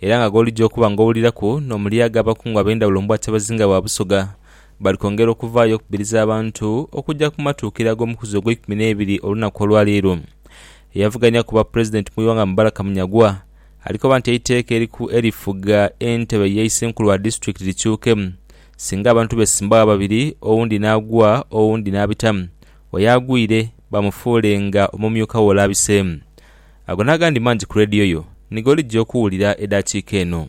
era nga gholija okuba nga owuliraku n'omulyaaga abakungu ab'endhawulo mbwa Kyabazinga wa Busoga bali kwongera okuvaayo okubiriza abantu okuja ku matuukira ag'omukuzi ogweikumi n'ebiri olunaku olwa leero. Eyavuganya ku bwa Pulezidenti mu ighanga Mubaraka Munyagwa alikoba nti eiteeka eriku erifuga entebe ye Isenkulu wa Disitulikiti likyuke singa abantu besimbagho ababiri owundi n'agwa owundi n'abita oyo agwire bamufuule nga omumyuka we olabise. Ago n'agandi mangi ku leediyo yo ni g'olijja okuwulira edaakiika eno.